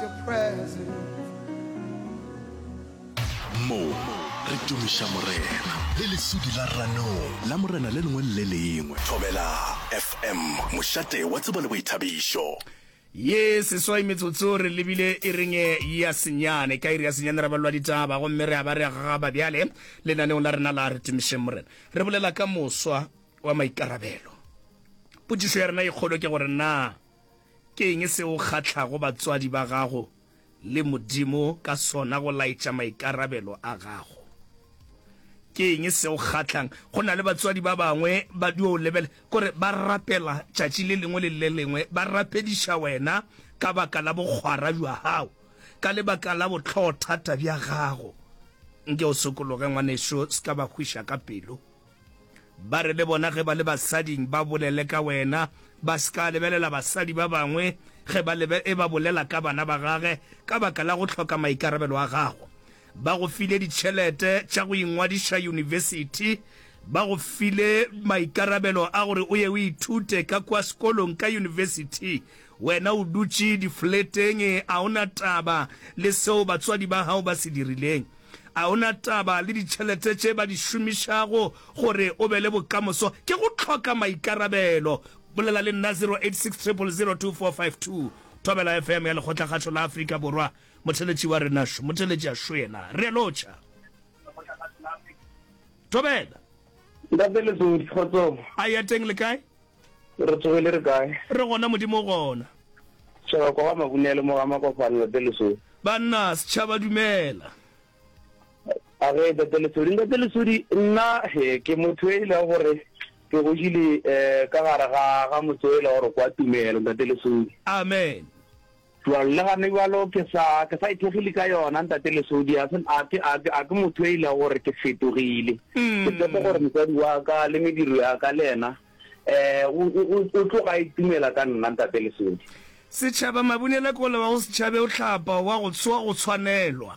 Mo re tumiša Morena. Le lesudi la ranong. La Morena le lengwe le le lengwe. Thobela FM, mošate wa tsebo le boithabišo. Ye seswai metsotso re lebile iring ya senyane. Ka iri ya senyane ra balwa ditaba gomme re a ba re a gagaba bjale lenaneong la rena la Re Tumišeng Morena. Re bolela ka moswa wa maikarabelo. Potšišo ya rena e kgolo ke gore na Ke eng se o kgahlago batswadi ba gago le Modimo ka sona go laetša maikarabelo a gago? Ke eng se o kgahlang? Go na le batswadi ba bangwe ba dio o lebele gore ba rapela tšatši le lengwe le le lengwe, ba rapediša wena ka baka la bokgwara bja gago, ka lebaka la bohlogothata bja gago. Nke o sokologe, ngwanešu, se ka ba hwiša ka pelo. Ba re le bona ge ba le basading ba bolele ka wena, ba se ka lebelela basadi ba bangwe ge ba lebe e ba bolela ka bana ba gage ka baka la go hloka maikarabelo a gago. Ba go file ditšhelete tša go ingwadiša yunibesithi, ba go file maikarabelo a gore o ye o ithute ka kua sekolong ka yunibesithi Wena o dutše difoleteng, a o na taba le seo batswadi ba gago ba se dirileng? A o na taba le ditšhelete tše ba di šomišago gore o be le bokamoso? Ke go hloka maikarabelo. Bolela le nna 0860002452. Thobela FM ya Lekgotlakgašo la Afrika Borwa. Motheletši wa rena šo, motheletši a šo yena. Re a lotšha. Thobela. Ntate Lesodi, kgotsong. A ya teng le kae? Re tsoge le re kae? Re gona, Modimo o gona. Tšhaba kwa ga Mabunele, mo ga Makopanelo, Tate Lesodi. Banna, setšhaba, dumela. A ge, Tate Lesodi. Ntate Lesodi, nna he, ke motho e lego gore ke godile ka gare ga, ga motse o e lego gore kwa Tumelo, Ntate Lesodi. Amen. Bjalo, le gane bjalo, ke sa, ke sa ithekgile ka yona, Ntate Lesodi. A se, a ke, a ke, a ke motho yo a ilego gore ke fetogile. Ke tshepe gore mosadi wa ka le mediro ya ka le yena, um, o, o, o, o tloga a itumela ka nna, Ntate Lesodi. Setšhaba, Mabunela ke o le wa go se tšhabe, o hlapa, o wa go, wa go tshwanelwa.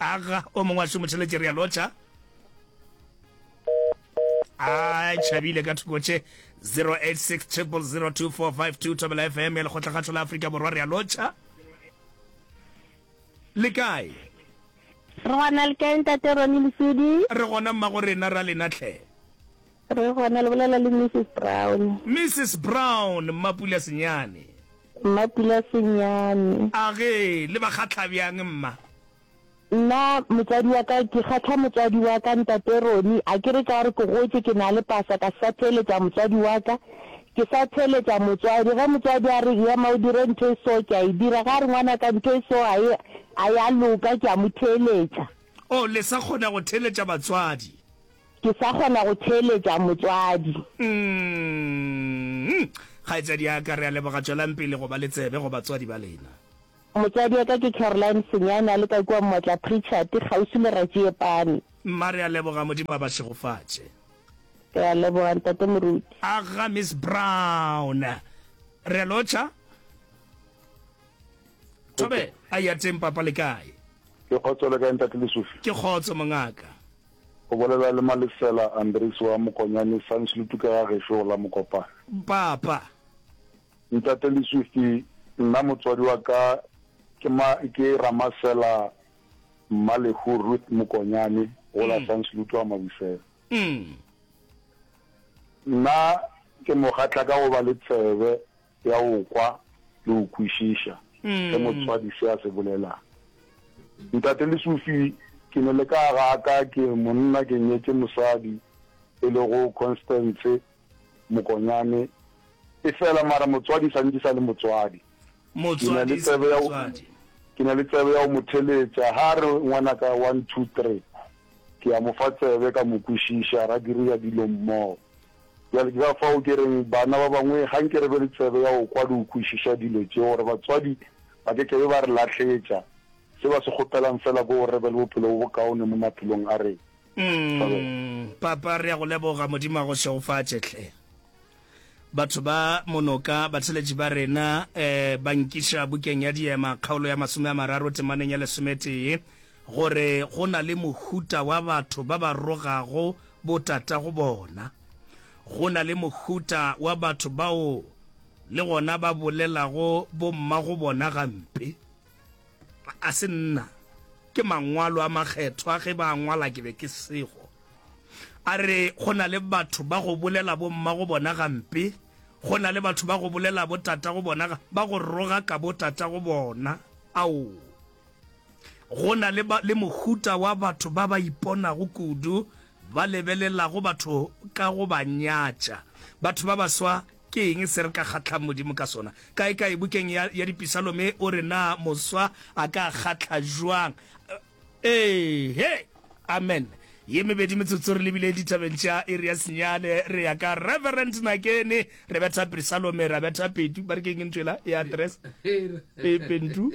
Aga o mongwe a šomotheletše re a lotšha. A tšhabile ka thoko tše 086 000245 Thobela FM ya lekgotlakgatho la Afrika Borwa re a lotšha. Le kae? Re gona le kae ntate Roni Lesudi? Re gona mmago rena ra lena tlhe. Re gona le bolela le Mrs. Brown. Mrs. Brown, Mmapula Senyane. Mmapula Senyane. A ge le ba kgahla bjang mma? Nna motswadi wa ka ke kgahla motswadi wa ka ntate Roni, a ke re ka gore ke gotše ke na le pasa ka se sa theeletša motswadi wa ka, ke sa theeletša motswadi. Ge motswadi a re ema o dire ntho e so ke a e dira, ge a re ngwana ka ntho e so ga e a ya loka ke a mo theeletša. Oh, le sa kgona go theeletša batswadi? Ke sa kgona go theeletša motswadi. Umm, kgaetšadi ya ka, re a leboga. Tšwelang pele go ba le tsebe go batswadi ba lena. Motswadi wa ka ke Caroline Senyane, a leka kua Motla Pritchard, kgauswi le Ratšiepane. Mma, re a leboga. Modimo a ba šegofatše. Re a leboga, Ntate Moruti. Aga, Miss Brown. Re a lotšha. Thobela, a ya teng, Papa, le kae? Ke kgotso, le kae, Ntate Lesufi? Ke kgotso, mongaka. O bolela le Malesela Andries wa Mokonyane, Sandslutu ke ga gešo go la Mokopane. Mpapa. Ntate Leswifi, nna motswadi wa ka ke ma, ke Ramasela Mmalehu Ruth Mokonyane go la Sandslutu a Mabusela. Nna ke mo kgahla ka go ba le tsebe Ke a go kwa le go kwešiša ge motswadi se a se bolelang. Ntate le Sophie, ke ne le ka ga ka ke monna ke nyetše mosadi e lego Constance Mokonyane efela mara motswadi sa ntše sa le motswadi. Ke na le tsebe ya ke na le tsebe ya go mo theletša ga re ngwanaka one two three ke a mo fa tsebe ka mo kwešiša ra diriya dilo mmogo. Bjale ke ka fao ke reng bana ba bangwe ga nke re be le tsebe ya go kwa le go kwešiša dilo tše, gore batswadi ba ke ke be ba re lahletša. Se ba se kgopelang feela ke gore re be le bophelo bo bokaone mo maphelong a rena. Umm, Papa, re ya go leboga. Modimo a go šegofatše, hle. Batho ba monoka, batheletši ba rena, eh, ba nkiša Bukeng ya Diema, kgaolo ya masome a mararo, temaneng ya lesometee, gore go na le mohuta wa batho ba ba rogago botatago bona. Go na le mohuta wa batho bao le gona ba bolelago bommago bona gampe. A se nna, ke Mangwalo a Makgethwa, ge ba a ngwala ke be ke sego. A re, Go na le batho ba go bolela bommago bona gampe, go na le batho ba go bolela botatago bona, ba go roga ka botatago bona. Ao! Go na le, ba, le mohuta wa batho ba ba iponago kudu, ba lebelelago batho ka go ba nyatša. Batho ba baswa, ke eng se re ka kgahllang Modimo ka sona? Kaekae bukeng ya, ya Dipisalome o re, Na moswa a ka kgahla bjang? Ee-he! Amen. Ye mebedi metsotso re lebile ditabeng tša iri ya senyane, re ya ka Reverend Nakeni, re betha Pisalome, ra betha Petu, ba re ke eng ntwela ya address? Pe, Pentu.